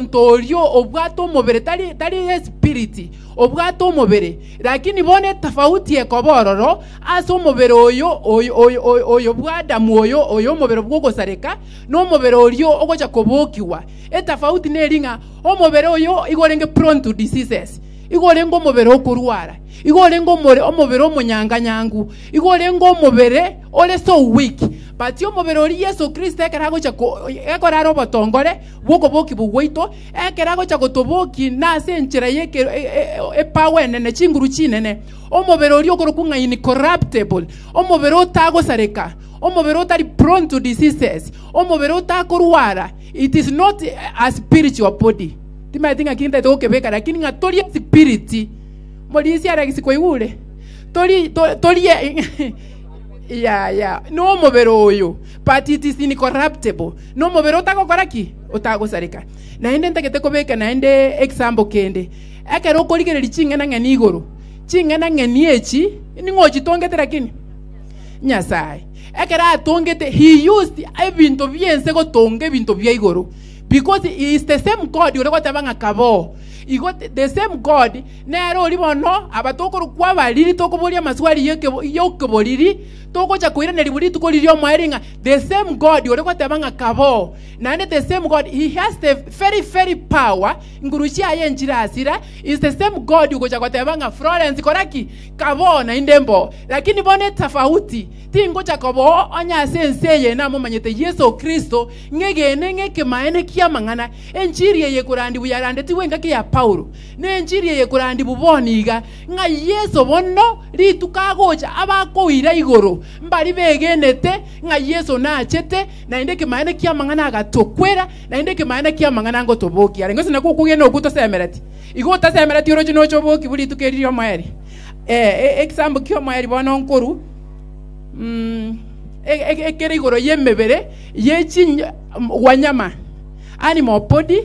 omonto oria obwate omobere, tari, tari espiriti, obwate omobere, lakini bono etafauti ekoba ororo ase omobere oyo oyo oyo oyo oyo bwa Adamu oyo oyo omobere bw'ogosareka na omobere orio ogocha kobokigwa. Etafauti neri ng'a omobere oyo igo orenge prone to diseases, igo orenge omobere okorwara, igo orenge omore- omobere omonyanganyangu, igo orenge omobere ore so weak. But omobere oria Yeso Kristo ekero agocha ko- ekero are obotongore bw'okobokigwa gwaito, ekero agocha gotobokia nase enchera y'ekero e- e- e- epago enene, chinguru chinene, omobere oria okorokwa ng'a incorruptible, omobere otagosareka, omobere otari prone to diseases, omobere otakorwara. It is not a spiritual body. Timaeti ng'a kintete gokebeka, lakini ng'a tori espiriti. Morisia ara gisi kwaigure? Tori, to- tori e- ya ya nomobere oyo but it is incorruptible Nomobere otagokora ki? Otagosareka. Naende ntagete kobeka naende egesambo kende. Ekero okorigereria ching'ana ng'eni igoro, ching'ana ng'eni echi ning'o ochitongete lakini Nyasae ekero atongete he used ebinto biense gotonga ebinto bia igoro because he is the same God ore goteba ng'a kaboo igo the- the same God nere ori bono abatokorokwa abariri tokoboria amaswali y'okebo- y'okoboriri Togocha koiraneria buna rituko riria omoerio ng'a the same God ore goteba ng'a kaboo, naende the same God he has the very very power nguru chiaye nchirasira is the same God ogocha goteba ng'a Florence kora ki? Kaboo naende mboo. Lakini bono etafauti tingocha koboo onye ase ense eye namomanyete Yeso Kristo ng'egene ng'ekemaene ki'amang'ana. Enchiri eye ekorandiwu yarandetigwe engaki ya Paulo, ne enchiri eye ekorandiwu bono iga. ng'a Yeso bono rituko agocha abakoira igoro, mbari begenete ng'a Yeso nachete, naende ekemanyereria ki'amang'ana agatokwera, naende ekemanyereria ki'amang'ana ngotobokia. Arenge gose nako okogenda okwo tosemereti. Igo otasemereti oroche noche obokiwu rituko eri ri'omoeri. Eh, e- egesaambu ki'omoeri bono nkoruu, mm, e- e- ekere igoro y'emebere ye chinyo- m- gwanyama, animal body,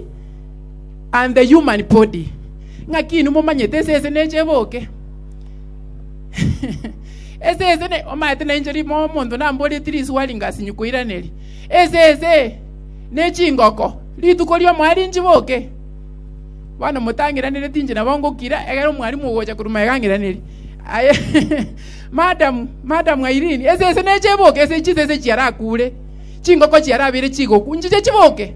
and the human body ng'aki inwe momanyete esese neche eboke esese ne omanyete nainche rimo omonto namboreti risuwa ringasi nyukoiraneri esese ne chingoko rituko riomwari nchiboke bono motang'iranereti inche nabo ngokira egere omwarimu ogocha korwa magang'iraneri aye madam madam airini esese neche eboke ese chisese chiarakure chingoko chiarabire chigoku nchiche chiboke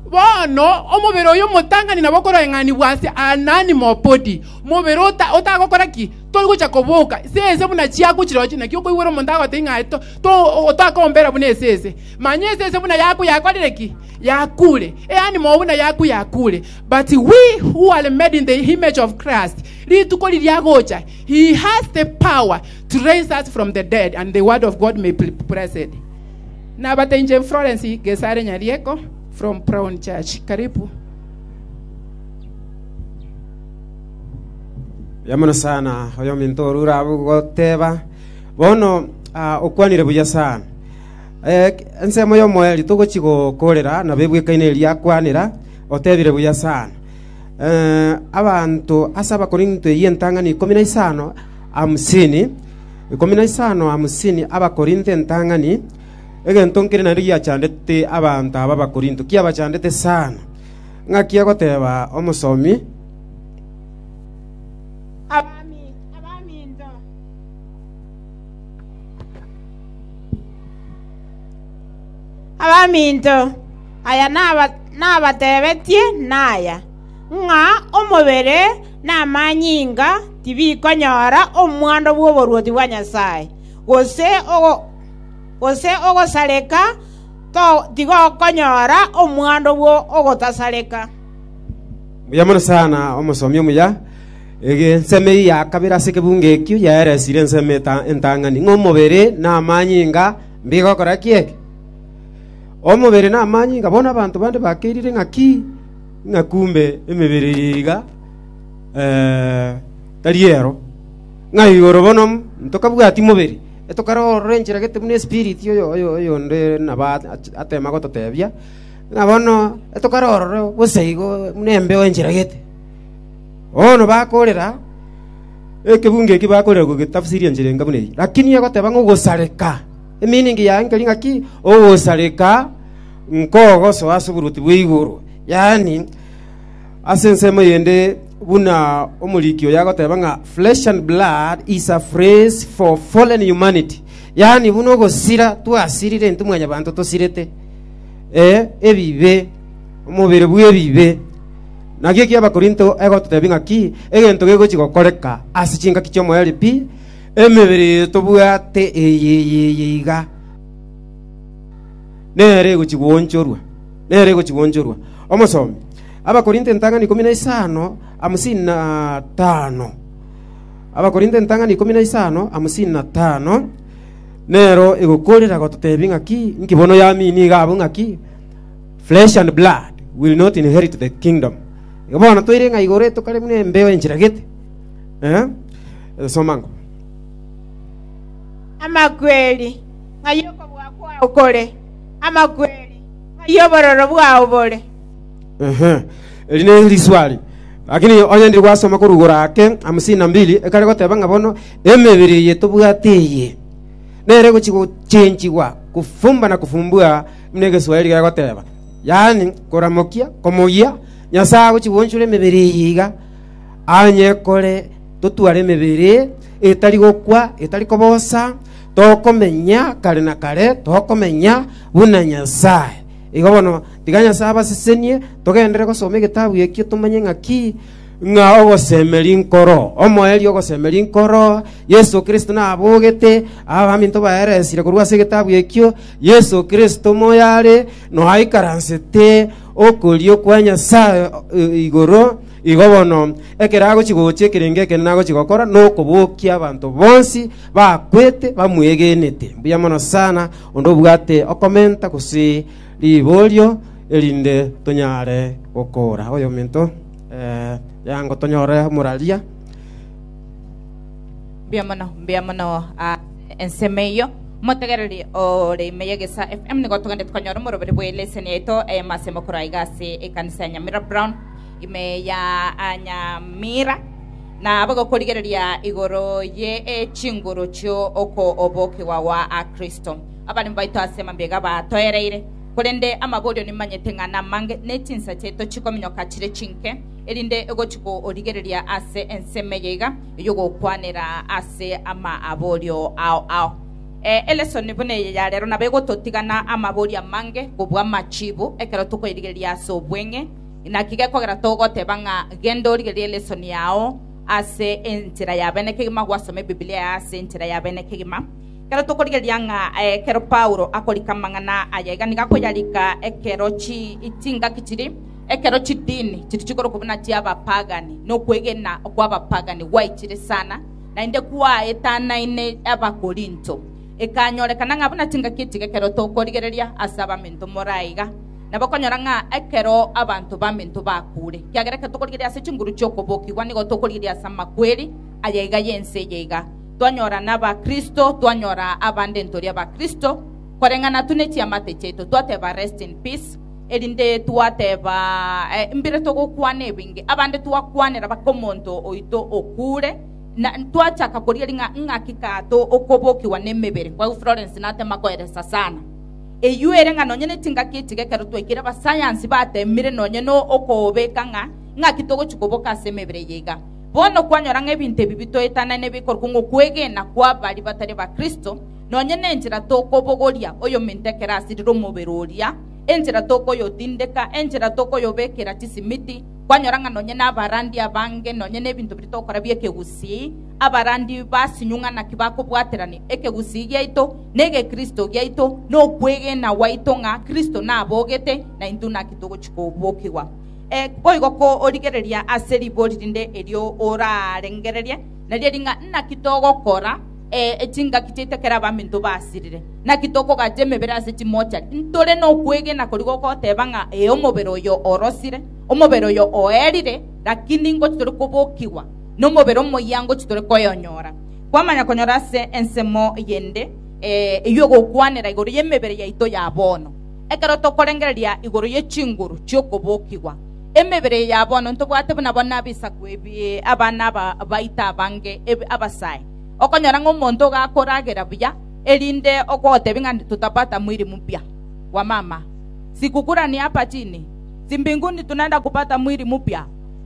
Bono omobere oyo omotang'ani nabo okoreng'anigwa ase Anani Mopodi, omobere ota- otagokora ki? Toigocha koboka, esese buna chiaku chirochio. Naki okoigwera omonto agotebia ng'a to- to- otakombera buna esese. Manya esese buna yaku yakorire ki? Yakure. Eani moyo buna yaku yakure. But we who are made in the image of Christ, rituko riria agocha, he has the power to raise us from the dead and the word of God may be blessed. Nabatenche Florence Gesare Nyarieko from Brown Church. Karibu. yamono sana oyo ominto orure abu goteba bono ah, okwanire buya sana Eh, k- ensemo yomoeri togochi gokorera nabo ebwekaine eria akwanera otebire buya sana Eh, abanto ase abakorinto eyio entang'ani ikomi na isano hamsini ikomi na isano hamsini Abakorintho entang'ani, egento nkere nario giachandete abanto aba Abakorintho, kiabachandete sana. Ng'aki agoteba omosomi, Abaminto, abaminto, aya nabatebetie naya, ng'a omobere namanyinga tibikonyora omwando bw'oboruoti bwa Nyasae, gose ogosareka tigokonyora omwando bw'ogotasareka. Mbuya mono sana omosomi omuya. Ensemo eyio ya kabere ase ekebungo ekio yaeresire ensemo entang'ani, ng'a omobere na amanyinga mbigokora kiege. Omobere na amanyinga bono abanto bande bakeirire ng'a ki? ng'a kumbe emebere eye iga tari eyaro, ng'a igoro bono ntokabwati mobere, etokare ororencheregete buna espiriti oyonde nabo atema gototebia, ng'a bono etokare ororo gose igo buna embeo encheragete. Bono bakorera, ekebungo eke bakorera gogetafsiri enchera enga buna eye, lakini egoteba ng'a ogosareka, emiiningi yaye nkeri ng'aki, ogosareka nkogosoa ase oboruoti bwa igoro, yaani, ase ensemo eyende buna omoriki oyo agoteba ng'a flesh and blood is a phrase for fallen humanity, yaani buna ogosira twasirire intwe mwanyabanto tosirete eh, ebibe, omobere bw'ebibe. Naki ekiya Abakorinto egototebia ng'a ki egento gegochi gokoreka ase chingaki chi'omoerio pi emebere eye tobwate eye eye eye iga. nere egochia goonchorwa, nere egochia goonchorwa. Omosomi, Abakorinto entang'ani ikomi na isano, hamsini na tano. Abakorinto entang'ani ikomi na isano, hamsini na tano. Nero egokorera gototebi ng'aki, nki bono yamini iga abwo ng'aki, flesh and blood will not inherit the kingdom. Igo bono toire ng'a igoro etokare buna embeo enchera gete. Eh? Soma ngo. Amakweri. ng'ai okobua kwao kore, amakweri, ng'ai obororo bwao bore. Ehe, eri neriswali. Lakini onye ndiri gwasoma korwa igoro ake, hamsini na mbili, ekare goteba ng'a bono emebere eye tobwate eye nere egochia gochenchigwa kofumba na kofumbua buna egeswahiri gegoteba, yaani koramokia, komoyia, Nyasaye agochia goonchora emebere eye iga anye kore totware emebere etari gokwa, etari kobosa, tokomenya kare na kare, tokomenya buna Nyasae. Igo bono, tiga Nyasae abasesenie, togenderere gosoma egetabu ekio tomanye ng'aki ng'a ogosemeria nkoro, omoerio ogosemeria nkoro, Yeso Kristo nabogete, abaminto baeresire korwa ase egetabu ekio, Yeso Kristo moyare noaikaransete okorio kwa Nyasae eh, igoro, igo bono ekero agochi gocha ekerenge ekende nagochi gokora nokobokia abanto bonsi bakwete bamwegenete. Mbuya mono sana onde obwate okomenta gose riborio erinde tonyare gokora oyo ominto eh, yango tonyore omoraria mbuya mono mbuya mono ah, ensemo eyo motegereri ore ime yegesa fm nigo togende tukanyora omoroberi bwa eleseni yaito eye masemo koraiga ase ekanisa ya nyamira brown ime ya Nyamira, na bagokorigereria igoro ye chinguru chio okobokigwa gwa Kristo. Abaremi baito ase mambega batoereire, korende amaborio nimanyete ng'a namange, ne chinsa chiaito chikominyoka chire chinke, erinde egochi korigereria ase ensemo eye iga ey'ogokwanera ase amaborio ao ao. Eh, elesoni buna eye ya rero nabo egototigana amaborio amange kobua amachiibu ekero tokoirigereria ase obweng'e, Naki gekogera togoteba ng'a genda origererie lesson yao ase enchera ya bene kegima gwasoma Ebibilia yao ase enchera ya bene kegima. Ekero tokorigereria ng'a ekero Paulo akorika amang'ana aya iga nigo akoyarika ekero chingaki chiri, ekero chidini chiri chikorokwa buna chi'abapagani, na okwegena kw'abapagani gwaichire sana, naende kwaetanaine Abakorinto. Ekanyorekana ng'a buna chingaki echi gekero tokorigereria ase abaminto more aiga, na bakonyora ng'a ekero abanto baminto bakuure, ekiagera ekero tokorigereria ase chinguru chi'okobokigwa nigo tokorigereria ase amakweri aya iga y'ense eye iga. Twanyora n'Abakristo, twanyora abande ntori Abakristo, koreng'ana tu ne chiamate chiaito, twateba Rest in peace, erinde twateba eh, mbire togokwana ebinge, abande twakwanera baka omonto oito okuure, na twachaka korigeria ng'a ng'aki kato okobokigwa n'emebere. Kwa hivyo Florence natema koeresa sana. Eyio ere ng'a nonya netingaki echiko ekero twaikire abasayansi bateemire nonya nokobeka ng'a ing'aki togochia koboka ase emebere eye iga. Bono kwanyora ng'a ebinto ebi bitoetanane bikorokwa ng'okwegena kwa baria batari abakristo, nonya nenchera tokobogoria oyominto ekero asirire omobere oria, enchera tokoyotindeka, enchera tokoyobekera chisimiti, kwanyora ng'a nonya nabarandia abange nonya nebinto biria togokora biekegusii, abarandi basinyugha naki bakobwaterania ekegusii giaito, na egekristo giaito, na okwegena gwaito ng'a Kristo nabogete, na intwe naki togochia kobokigwa. Eh, boigo korigereria ase ribori rinde erio orarengererie, nario eri ng'a naki togokora eh, chingaki chiaito ekero abaminto basirire. Naki tokogacha emebere ase chimochari. Ntore nokwegena koria gogoteba ng'a ee omobere oyo orosire, omobere oyo oerire, lakini ingochi tore kobokigwa. Nomobere omoyia ngochia tore koyonyora. Kwamanya konyora ase ensemo eyende eyio ogokwanera igoro y'emebere yaito ya bono. Ekero tokorengereria igoro ye chinguru chi'okobokigwa, emebere eye ya bono ntobwate buna bono abisaku ebi abana aba baito abange ebe abasae. Okonyora ng'a omonto iga akoragera buya erinde ogotebia ng'a tutapata mwili mpya wa mama, sikukura ni hapa chini, si mbinguni tunaenda kupata mwili mpya?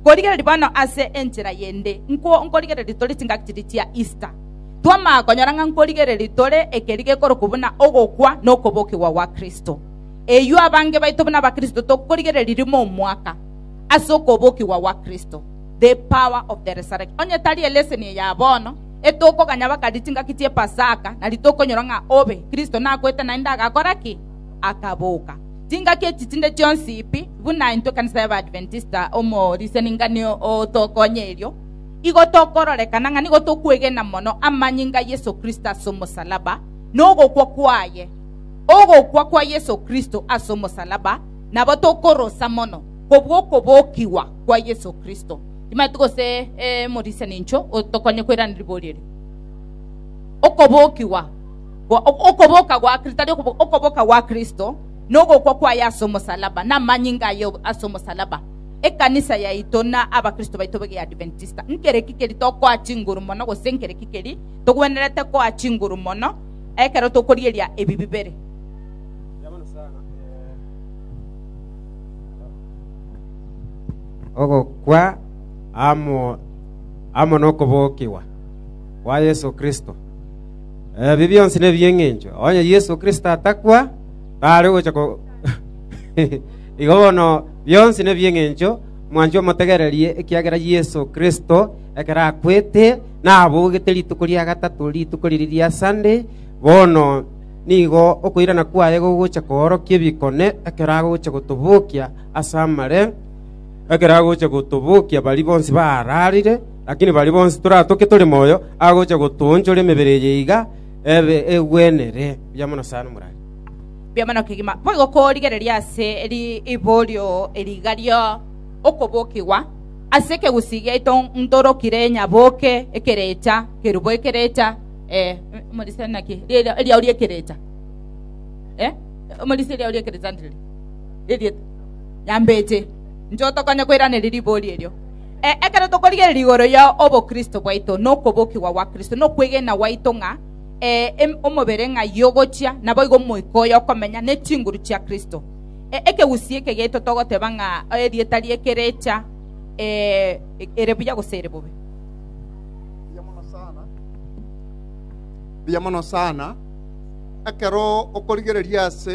Nkorigereria bono ase enchera yende nkwo nkorigereria tore chingaki chiria chia Easter. Twamanya konyora ng'a nkorigereria tore ekeri gekorokwa buna ogokwa na okobokigwa gwa Kristo. Eyio abange baito buna Abakristo tokorigereria rimo omwaka ase okobokigwa gwa Kristo. The power of the resurrection. Onye tari eleseni eye ya bono, etokoganya bakaria chingaki chi'epasaka, nari tokonyora ng'a obe, Kristo nakwete naende agakora ki? akaboka. Chingaki echi chinde chionsi pi buna intwe ekanisa y'Abaadventista omo riseningani otokonya erio, igo tokororekana ng'a nigo tokwegena mono amanyinga a Yeso Kristo ase omosalaba na ogokwa kwaye. Ogokwa kwa Yeso Kristo ase omosalaba nabo tokorosa mono kobua okobokigwa kwa Yeso Kristo. Timanyeti gose eh, morisani incho otokonye koirana riborio erio. Okobokigwa Okoboka gwa Kristo, tari okoboka, okoboka gwa Kristo na ogokwa kwaye ase omosalaba na amanyinga aye ase omosalaba. Ekanisa yaito na abakristo baito be Adventista, nkereki keri tokoa chinguru mono gose nkereki keri togwenerete koa chinguru mono ekero tokorieria ebi bibere? ogokwa amo amo nokobokigwa kwa Yeso Kristo. Ebi bionsi nebi'engencho, onye Yeso Kristo atakwa, tare gocha korwa igoro. Igo bono bionsi nebi'engencho, mwanche omotegererie, ekiagera Yeso Kristo, ekero akwete, nabogete rituko ria gatato, rituko riria ria Sande, bono nigo okoirana kwaye gogocha koorokia ebikone, ekero agocha gotobokia as'amare, ekero agocha gotobokia baria bonsi baararire, Lakini baria bonsi toratoke tore moyo agocha gotoonchora emebere eye iga ebe egwenere. Mbuya mono sana morare. Mbuya mono kegima. Boigo korigereria ase riborio rigario okobokigwa ase ekegusi giaito ntorokire nyaboke ekerecha kerubo ekerecha eh, omorisia naki Ria- riao riekerecha eh, omorisia riao riekerecha ndiri ririete nyambeche nchotokonye koiraneria ribori erio Ee, ekero tokorigereria igoro ya obokristo bwaito na okobokigwa gwa Kristo, na okwegena gwaito ng'a ee, omobere ng'a yogochia, naboigo omoika oye okomenya ne chinguru chia Kristo. Ee, ekegusii eke giaito togoteba ng'a erieta rie kerecha ee, ere buya gose ere bobe. Mbuya mono sana ekero okorigereria ase